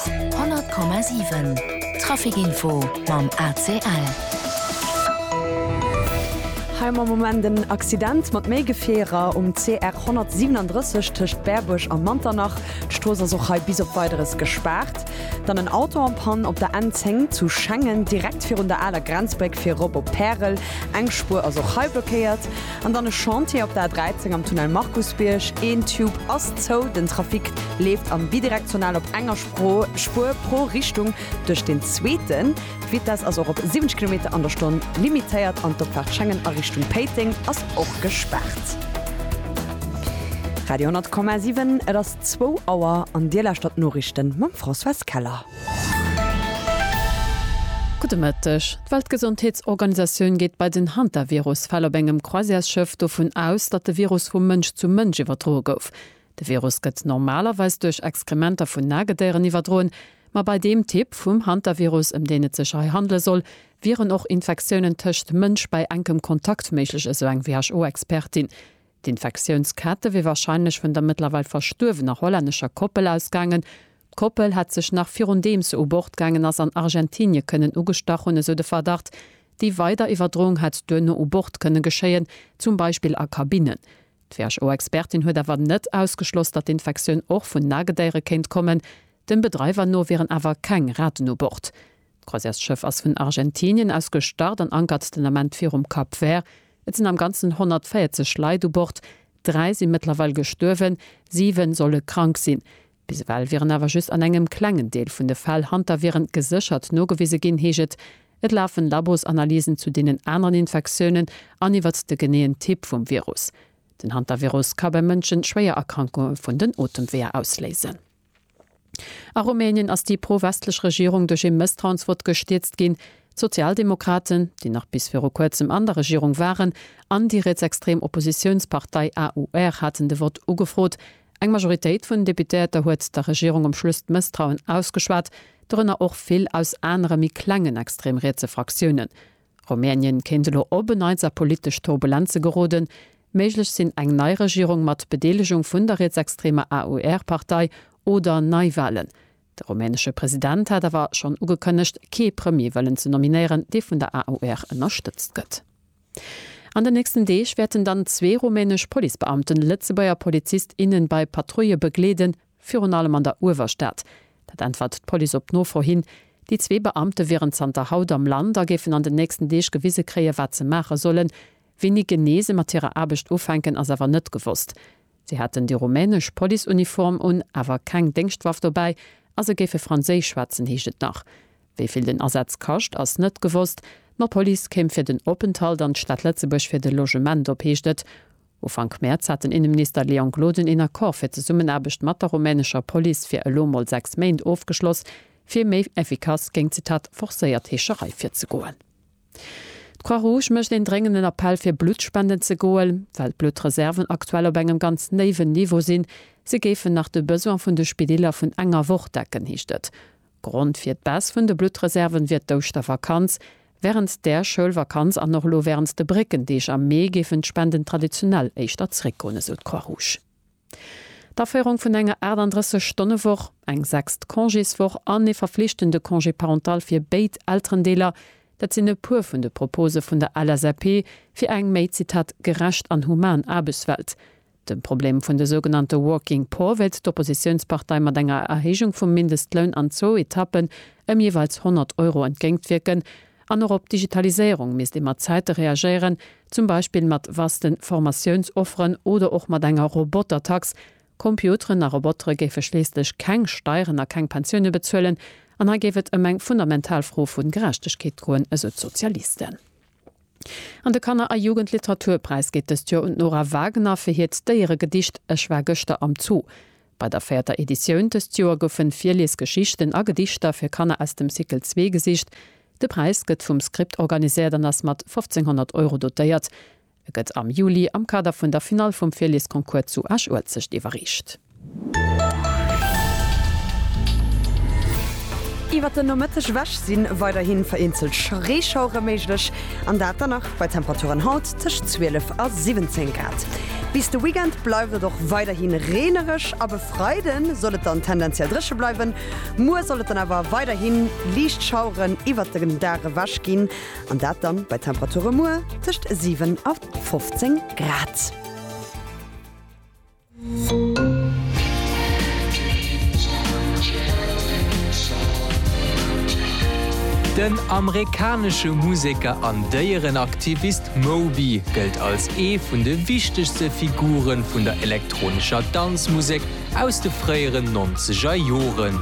100,7 Trafic Info mam ACL. Hei mam Moment en Accident mat méi Gefierer um CR 137 tëscht Berbuerg a Manternach. D'Strooss ass och hei bis op Weideres gespaart. Dann en Auto am Pann op der N 10 zu Schengen, direkt virun der aler Grenzbréck fir erop op Pärel. Eng Spuer ass och hei blockéiert. An dann e Chantier op der A13 am Tunnel Markusbierg, een Tube ass zou, den Trafic leeft am Bidirektional op enger Spuer pro Richtung duerch deen zweeten. D'Vitess ass och op 70 Kilometer an der Stonn limitéiert an d'Opfaart Schengen a Richtung Péiteng ass och gespaart. Radio 10,7 Et ass zwou Auer an Dir lauschtert d'Noriichten mam Françoise Keller. Gudde Mëtteg. D'Weltgesondheetsorganisatioun geet bei den Hantavirus-Fäll op engem Croisièresschëff dovun aus, datt de Virus vu Mënsch zu Mënsch iwwerdroe gouf. De Virus gëtt normalerweis duerch Exkrementer vun Nagedéieren iwwerdroen, ma bei deem Typ vum Hantavirus, ëm deen et sech hei handele soll, wieren och Infektiounen tëscht Mënsch bei enkem Kontakt méiglech, esou eng WHO-Expertin. D'Infektiounskette wier warscheinlech vun der mëttlerweil verstuerwener hollännescher Koppel ausgaangen. D'Koppel hätt sech nach virun deem se u Bord gaangen ass an Argentinie kënnen ugestach hunn, esou de Verdacht. Déi weider Iwwerdroung hätt duerno u Bord kënne geschéien, zum Beispill a Kabinnen. D'WHO-Expertin huet awer net ausgeschloss, datt d'Infektioun och vun Nagedéiere kéint kommen. Dem Bedreiwer no wieren awer keng Raten u Bord. D'Croisièrsschëff ass vun Argentinien aus gestart an ankert den Ament virum Cap Vert. Et sinn am Ganzen 140 Leit u Bord. Dräi si mëttlerweil gestuerwen, siwe solle krank sinn. Bis ewell wieren awer just an engem klengen Deel vun de Fäll Hanterviren geséchert nogewise ginn, heescht et. Et lafen Labosanalysen zu deenen aneren Infektiounen an iwwert de geneeën Typ vum Virus. Den Hantavirus ka bei Mënschen schwéier Erkrankunge vun den Otemweeër ausléisen. A Rumänien ass déi pro-westlech Regierung duerch ee Mësstrauensvott gestierzt ginn. D'Sozialdemokraten, déi nach bis viru kuerzem an der Regierung waren, an déi rietsextrem Oppositiounspartei AUR haten de Vott ugefrot. Eng Majoritéit vun Deputéierter huet der Regierung um Schluss d'Mësstrauen ausgeschwat, dorënner och vill aus anere méi klengen extrem rietse Fraktiounen. Rumänien kéint elo op en Neits a politesch Turbulenze geroden. Méiglech sinn eng nei Regierung mat Bedeelegung vun der rietsextremer AUR-Partei oder Neiwalen. De rumänesche President hat awer schonn ugekënnegt, kee Premier wëllen ze nominéieren, dee vun der AUR ënnerstëtzt gëtt. An den nächsten Deeg wäerten dann zwee rumänesch Policebeamten Lëtzebuerger Polizist, innen bei Patrouille begleeden Virun allem an der Uewerstad. Dat äntwert d'Police op Nofro hin. Déi zwee Beamte wieren zanter haut am Land a géifen an den nächsten Deeg gewise kréien, wat se maache sollen. Wéini genee se mat hirer Aarbecht ufänken, ass awer net gewosst. Si hätten déi rumänesch Policeuniform un, awer keng Déngschtwaff dobäi a se géife franséisch schwätzen, heescht et nach. Wéi vill den Asaz kascht, ass net gewosst. D'Police kéim fir den Openthalt an d'Stad Lëtzebuerg fir de Logement op, heescht et. Ufank Mäerz hat den Inneminister Leon Gloden een Accord fir d'Zesummenaarbecht mat der rumänescher Police fir elo mol sechs Méint ofgeschloss, fir méi effikass géint, Zitat, forcéiert Heescherei virzegoen. D'Croix-Rouge mécht een dréngenden Appell fir Blutt spenden ze goen, well d'Bluttreserven aktuell op engem ganz néiwen Niveau sinn. Se géifen nach de Besoin vun de Spidiller vun enger Woch decken, heescht et. Grond fir d'Baisse vun de Bluttreserven wier d'Ouschtervakanz. Wärend där Schoulvakanz an och elo wärend de Bréckendeeg am Mee géifen d'Spenden traditionell éischter zeréckgoen, esou d'Croix-Rouge. D'Aféierung vun enger 38 Stonne Woch, eng sechst Congéswoch an ee verflichtende Congé parental fir béid Elterendeeler, dat sinn e puer vun de Propose vun der LSAP fir eng méi, Zitat, gerecht an human Aarbechtswelt. De Problem vun de sougenannte Working Poor wéilt d'Oppositiounspartei mat enger Erhéijung vum Mindestloun an zwou Etappen ëm jeeweils 100 Euro entgéintwierken. An och op d'Digitaliséierung misst ee mat Zäite reagéieren, zum Beispill mat vaste Formatiounsofferen oder och mat enger Robotertax. Computeren a Robotere géife schliisslech keng Steieren a keng Pensioune bezuelen. An hei géif et ëm eng fundamental Fro vu Gerechtegkeet goen, esou d'Sozialisten. An de Kanner a Jugendliteraturpräis geet dëst Joer un d'Nora Wagner fir hiert Déieregedicht Ech war gëschter am Zoo. Bei der véierter Editioun dëst Joer goufe Virliesgeschichten a Gedichter fir Kanner aus dem Cycle zwee gesicht. De Präis gëtt vum Script organiséiert an ass mat 1.500 Euro dotéiert. E gëtt am Juli am Kader vun der Finall vum Virliesconcours zu Esch-Uelzecht iwwerreecht. Iwwert den Nomëtteg ewech si weiderhi vereenzelt Reeschauere méiglech, an dat dann nach bei Temperaturen haut tëscht 12 a 17 Grad. Bis de Weekend bleift et och weiderhi reenereg, ab e Freide soll et dann tendenziell dréche bleiwen. Muer soll et dann awer weiderhi liicht Schaueren iwwert de Dag ewech ginn, an dat dann bei Temperature muer tëscht 7 a 15 Grad. Den amerikanesche Museker an Déierenaktivist Moby gëllt als ee vun de wichtegste Figure vun der elektronescher Danzmusek aus de fréieren nonzeger Joren.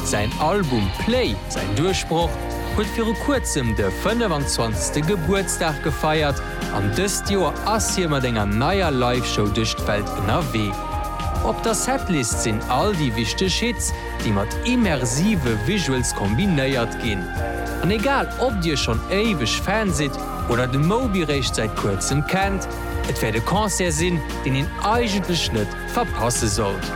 Säin Album Play, säin Duerchbroch, huet viru kuerzem de 25. Gebuertsdag gefeiert. An dëst Joer ass hie mat enger neier Live-Show duerch d'Welt ënnerwee. Op der Setlist sinn all déi wichteg Hits, déi mat immersive Visuals kombinéiert ginn. An egal ob dir schonn éiweg Fan sidd oder de Moby réischt säit kuerzem kennt, et wäert e Concert sinn, deen een eigentlech net verpasse sollt.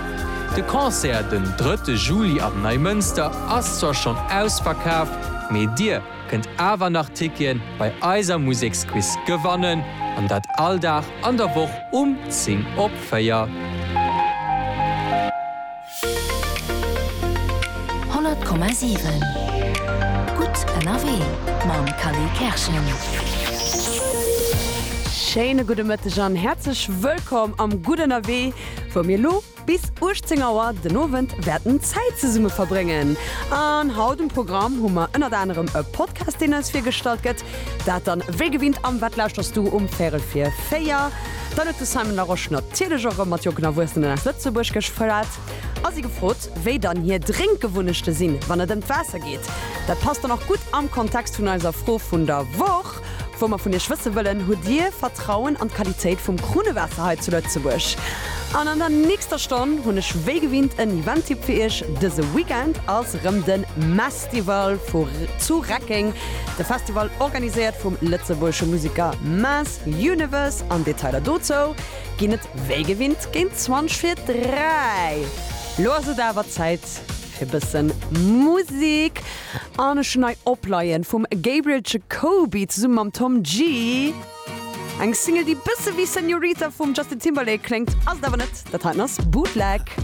De Concert den drëtte Juli am Neimënster ass zwar schonn ausverkaf, mee dir, kënnt awer nach Tickien bei eiser Museksquiz gewannen an dat all Dag an der Woch um 10 op 4. Honnert Komma siwen Gutt ënnerwee mam Kally Kerschen. Schéine gudde Mëtteg an häerzlech wëllkomm am Gutt ënnerwee, wou mir elo Bis 18 Auer den Owend wäerten Zäit zesumme verbréngen. An haut um Programm hu mer ënnert anerem e Podcast, deen eis virgestallt gëtt. Dat dann wéi gewinnt am Wat lauschterst du um véierel vir véier. Dann huet de Simon Larosche natierlech och erëm mat jonken Erwuessenen aus Lëtzebuerg geschwat a si gefrot, wéi dann hir Drénkgewunnechte sinn, wann et ëm d'Waasser geet. Dat passt dann och gutt am Kontext vun eiser Fro vun der Woch. Wou mer vun Iech wësse wëllen, Hutt Dir Vertrauen an d'Qualitéit vum Krunnewaasser hei zu Lëtzebuerg? An an der nächster Stonn hunn ech wéi gewinnt en Event-Tipp fir Iech. Dëse Weekend ass rëm de Mestival vu zu Reckeng, de Festival organiséiert vum lëtzebuergesche Museker Mass Universe an Detailer dozou ginn et wéi gewinnt géint 20 vir 3. Lo ass et awer Zäit. Fir bëssen Musik an ech hun hei Opleien vum Gabriel Jacoby zesummen mam Tom Gee. Eng Single déi bëssen wéi Senorita vum Justin Timberlake kléngt ass et awer net, dat heiten ass Bootleg.